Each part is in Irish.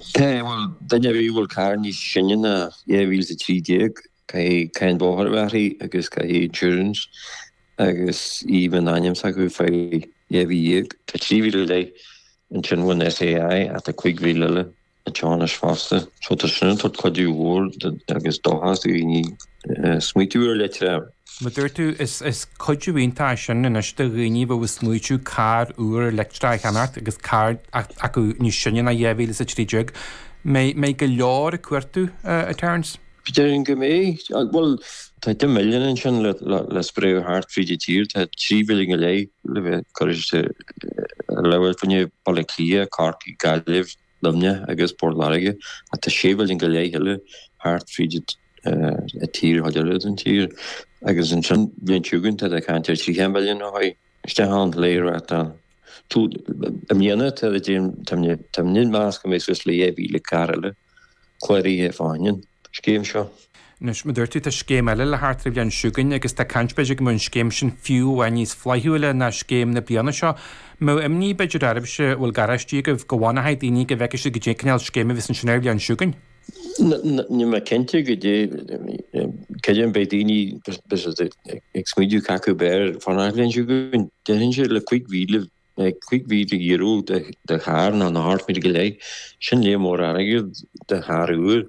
Bhuel, duine ar bith a bhfuil carr níos sine ná 2013, caithfidh cáin bóthair a bheith uirthi agus caithfidh insurance agus í a bheith in ainm s'acu fá dhá mhí dhéag. Tá 3,000 go leith ansin ón SEAI ach tá 5,000 eile anseo anois fosta so tá sin ag tabhairt cuidiú mhór agus dóchas do dhaoine smaoitiú ar leictreach. Mar a dúirt tú, is cuidiú iontach é sin anois do dhaoine bheith ag smaoitiú carr úr leictreach a cheannacht agus carr acu níos sine ná 2013. Mbeidh go leor ag cuartú, a Terence. Déarfainn go mbeidh. Bhuel, tá 10 milliún ansin le spréadh thart fríd an tír. Tá 3 mhilliún go leith le bheith curtha ar leataobh fá choinne Bhaile Átha Cliath, Corcaigh, Gaillimh, Luimne agus Port Láirge ach tá séimhín go leith eile thart fríd an tír chomh deireadh den tír agus ansin bhí an tSiúgán tar éis caint ar 30 milliún ó shoin isteach ann léi raic ann. I mbliana tá mé i measc an mbeidh suas le 10,000 carr eile cláraithe i Fáinne. scéim seo. Anois, mar a dúirt tú, tá scéim eile le theacht ar an bhliain seo chugainn agus tá caint, b'fhéidir, go mbeadh an scéim sin fiú amháin níos flaithiúla ná scéim na bliana seo. Mbeadh imní, b'fhéidir, oraibhse, a bhfuil garáistí agaibh, go bhfanfaidh daoine, go bhfeicfidh siad goidé cineál scéime a bheas ansin ar an bhliain seo chugainn. Níl mé cinnte goidé, cad é an mbeidh daoine, b'fhéidir, ag smaoiteadh cacu b'fhearr fanacht ar an bhliain seo chugainn. Déarfainnse le cúig mhíle Beidh cúig mhíle euro de charr nó na hocht míle go leith. Sin lear mór airgid de charr úr.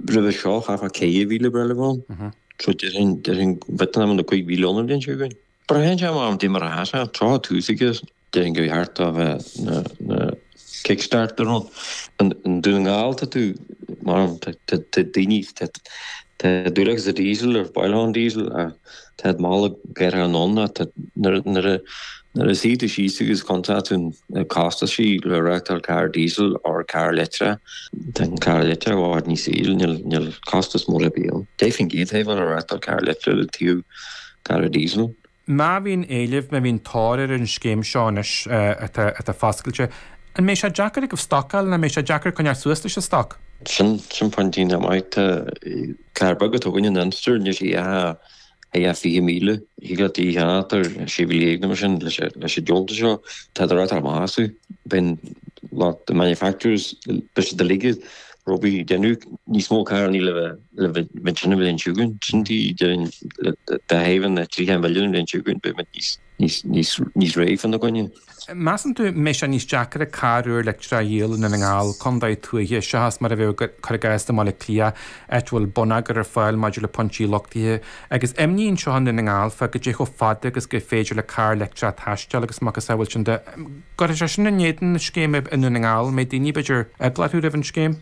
Roimhe seo chaithfeá caoga mhíle breithlimh ann. So déarfainn b'fhéidir nach mbeidh na cúig mhíle ann an bhliain seo chugainn. Braitheann sé goidé mar atá sé. Tráth tús aige déarfainn go bhí thart dá bheith na. Kickstart ar an. I nDún na nGall, tá tú marbh, tá daoine, tá dúil acu sa díosal, ar bhoilthán díosal, tá siad mall ag athrú anonn ach. Nuair a suífidh tú síos agus cuntfaidh tú na costaisí le reáchtáil carr díosail or carr leictreach, tá an carr leictreach i bhfad níos ísle, níl costas mór ar bith ann. Fiche faoin gcéad atá ann le reáchtáil carr leictreach le taobh carr díosail. Má bhíonn éileamh, má bhíonn tóir ar an scéim seo anois atá foscailte, an mbeidh sé deacair agaibh stocáil, an mbeidh sé deacair coinneáil suas leis an stoc? Sin pointe iontach maith. Tá carr beag a dtugtar an Inster air, níl sé ach ag 20,000. Thig leat é a cheannacht ar €16,000 nó mar sin leis an deontas seo. Tá siad rite amach astu. Bíonn lucht manufacturers, beidh siad uilig ró-busy ag déanamh níos mó carrannaí le bheith. le mintrean a bhfuil an siúgán sin tí dúinn, le dá thaobh na dtríocha milliún a bhfuil an siúgán beidh muid níos, níos, níos, níos réidh fá na gcoinne. Measann tú go mbeidh sé níos deacaire carr leictreach a dhíol i nDún na nGall, contae tuaithe, seachas mar a bheadh cuir i gcás i mBaile Átha Cliath, áit a bhfuil bonneagar ar fáil maidir le pointí luchtaithe. Agus imní anseo i nDún na nGall fá goidé chomh fada agus gur féidir le carr leictreach taisteal agus a mhacasamhail sin de, gur sé sin in éadan na scéime i nDún na nGall, mbeidh daoine b'fhéidir eaglach roimh an scéim.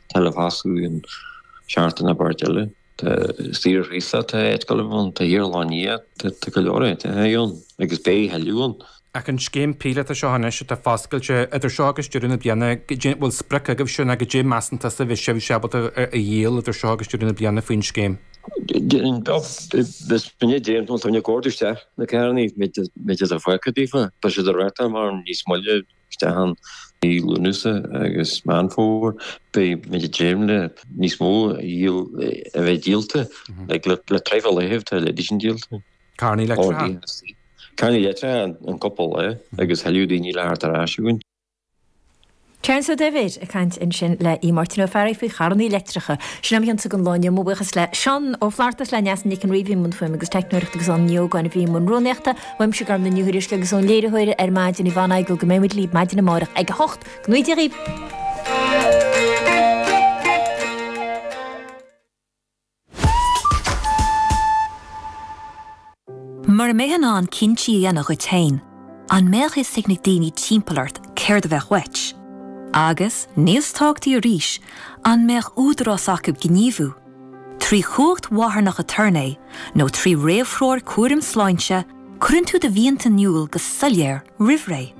Talivasu i nseartan abairt eile. Tá saoir thusa, tá éitgolaim ann, tá iarláin ia, tá go leor áiteacha ann, agus beidh tuilleadh ann. Ach an scéim píolótach seo anois atá foscailte idir seo agus deireadh na bliana, cén, bhfuil sprioc agaibhse nó goidé measann tusa a bheidh sibhse ábalta a dhíol idir seo agus deireadh na bliana faoin scéim? Déarfainn beag is fionna dé, nó tá mé ag ordú isteach na carrannaí, méid is a bhfaca daofa, tá siad ag racadh thar maidhm níos moille. isteach i Lúnasa agus Meán Fómhair, beidh muid ag dréim le níos mó a bheith díolta, le treibh a léamh, tá leithéidí sin díolta. Carrannaí leictreacha. Carrannaí leictreacha an cúpla lae agus tuilleadh daoine le theacht ar ais chugainn. Terence Ó Duibhir ag caint ansin le hAodh Máirtín Ó Fearraigh faoi charrannaí leictreacha. Sin é Adhmhaidin an lae inniu, mo bhuíochas le Seán Ó Flaithearta, le Neasa Nic an Ríogh a bhí i mbun fuaime agus teicneoireachta agus Áine Ní Ógáin a bhí i mbun rúnaíochta. Uaimse Gormfhlaith Ní Thuairisg agus ón léiritheoir ar maidin i bhfanaidh go go mbeimid libh maidin amárach ag a 8, go ngnóthaí Dia dhaoibh. Mura mbeifeá in ann cinntí a dhéanamh dhuit féin, an mbeadh a fhios ag na daoine timpeall ort céard a bheadh uait? Agus, níos tábhachtaí arís, an mbeadh údarás acu gníomhú? Trí chumhacht mharthanach aturnae nó trí réamhthreoir cúraim sláinte, cuireann tú do mhianta in iúl go soiléir roimh ré.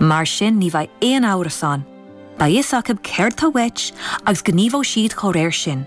Mar sin ní bheidh aon amhras ann, beidh a fhios acu céard atá uait agus gníomhóidh siad dá réir sin.